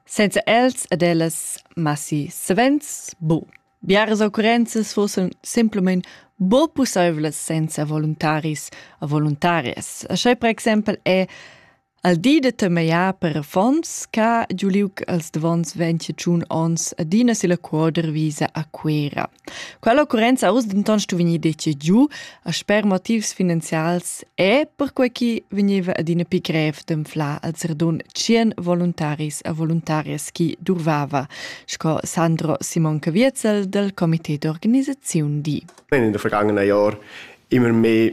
Senza els ed ellas massi savens bu. Biaras occurrenzas fossan simplamain bo pussaivlas senza voluntaris e voluntarias. Așa per exempel è al di da temejar per fonds ca giu liug als davons 25 ons adina si la quoder visa a Cuera. Quella occurrenza ha uss denton stu vegnir decidiu, a sper motivs finanzials e perquei che vegneva adina pli grev d'anflar als radun tschien voluntaris e voluntarias chi durvava, sco Sandro Simon Caviezel dal comité d'organisaziun di. In den vergangenen Jahren immer mehr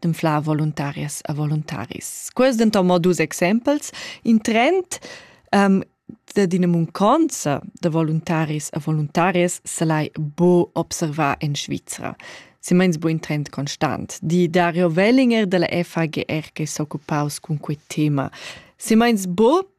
d'anflar voluntarias e voluntaris. Quests denton mo dus exempels. In trend um, da d'ina munconza da voluntaris e voluntarias se l'hai bo observà en Svizra. Simeins bo in trend constant, di Dario Wellinger della FAGR che s'occupaus cun quei tema. Simeins bo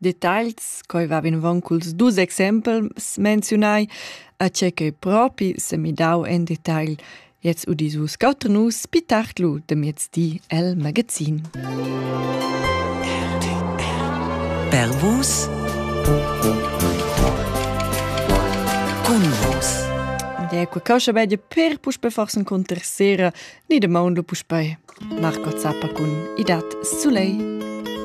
Detagls, quai va vinavon culs dus exempels menziunai, a tgei ch'ei propi semidau en detagl. Gliez udis vus quatter nus pi tard lu de miezdi el magazin. Per vus Cun vus Ja, qua causa bella per puspe forse un con tercera, ni de mondo puspe. Marco Zappa cun Idat Soleil.